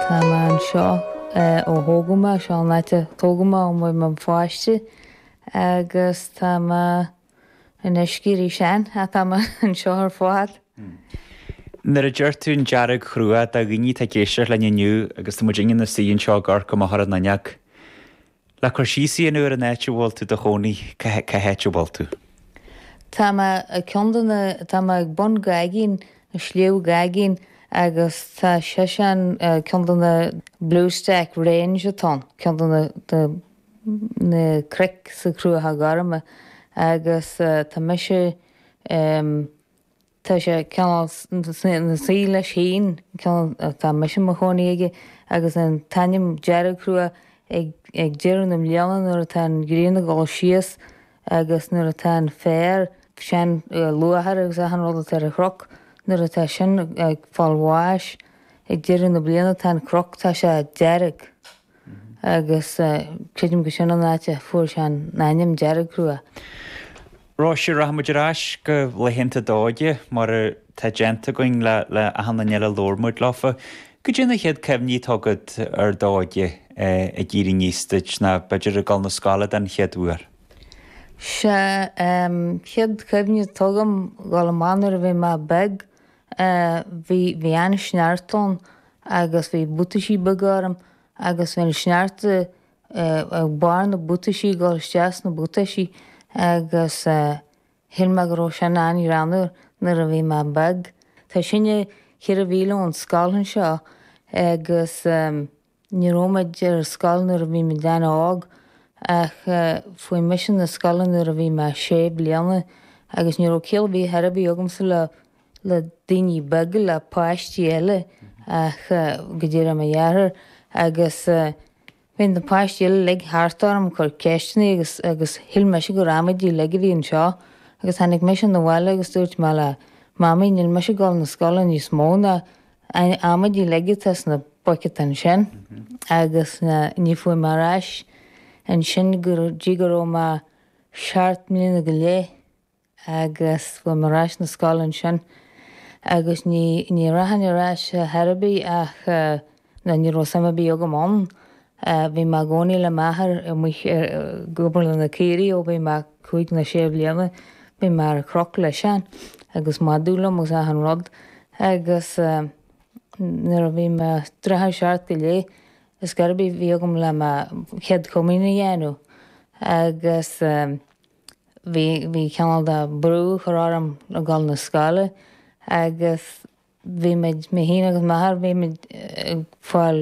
Tá mé anseo ó thógadh mé, seo an áit a tógadh mé ó bhí mé i mo pháiste agus tá mé in uisce arís ann ach tá mé anseo ar fad. Nuair a deir tú an Deargchruach, tá daoine atá ag éisteacht linn inniu agus tá muid inár suí anseo i gCorca Mháthair an Linneach. Le cur síos a dhéanamh ar an áit a bhfuil tú i do chónaí, cá háit a bhfuil tú? Tá mé ag ceann de na, tá mé ag bun Gaigín, Sliabh Gaigín agus tá seisean ag ceann de na Bluestack Range atá ann, ceann de na, de na cnoic sna Cruacha Gorma agus tá mise, em, Tá sé cineál ina suí leis féin, an ceann atá mise i mo chónaí aige agus an t-ainm Deargchruach ag deireadh na bliana nuair atá an ghrian ag dul síos agus nuair atá an féar is an luachair agus achan rud atá ar an chroc, nuair atá sin ag fáil bháis ag deireadh na bliana tá an croc, tá sé dearg. agus creidim gur sin an áit a fuair sé an ainm Deargchruach. Róise, rachaidh muid ar ais go laethanta d'óige, mar atá déanta againn le achan duine eile a labhair muid leo. Cad é na chéad cuimhní atá agat ar d'óige ag éirí aníos duit, ná b'fhéidir ag dul 'na scoile den chéad uair? Sea, chéad cuimhne atá agam, ag dul amach nuair a bhí mé beag, Bhí an sneachta ann agus bhí buataisí beaga orm agus bhí an sneachta ag barr na buataisí ag dul isteach sna buataisí agus shíl mé go raibh sin an-ghreannmhar nuair a bhí mé beag. Tá sinne ceithre mhíle ón scoil anseo agus. Ní raibh muid ar scoil nuair a bhí muid an-óg ach chuaigh mise na scoile nuair a bhí mé sé bliana agus ní raibh ciall ar bith ar bith agamsa le le daoine beaga, le páistí eile ach go díreach mo dheartháir agus bhí na páistí eile uilig thart orm ag cur ceisteanna agus agus shíl mise gur amaidí uilig a bhí anseo agus tháinig mise na bhaile agus dúirt mé le mamaí níl mise ag dul na scoile níos mó ná Amaidí uilig atá sna buiceata ansin agus ní chuaigh mé ar ais ansin go dtí go raibh mé seacht mbliana go leith agus chuaigh mé ar ais na scoile ansin agus ní rachainn ar ais ar chor ar bith ach ní raibh suim ar bith agam ann Bhí mé i gcónaí le m'athair amuigh ag comhair na caoirigh ó bhí mé cúig nó sé bhliana. Bhí mé ar chroc leis-sean agus madadh liom agus achan rud agus nuair a bhí mé tarraingt ar seacht go leith is gurb é bhí agam le mo Chéad Chomaoin a dhéanamh agus bhí, bhí cineál de brú a chur orm a dhul na scoile agus bhí muid, mé fhéin agus m'athair, bhí muid ag fáil.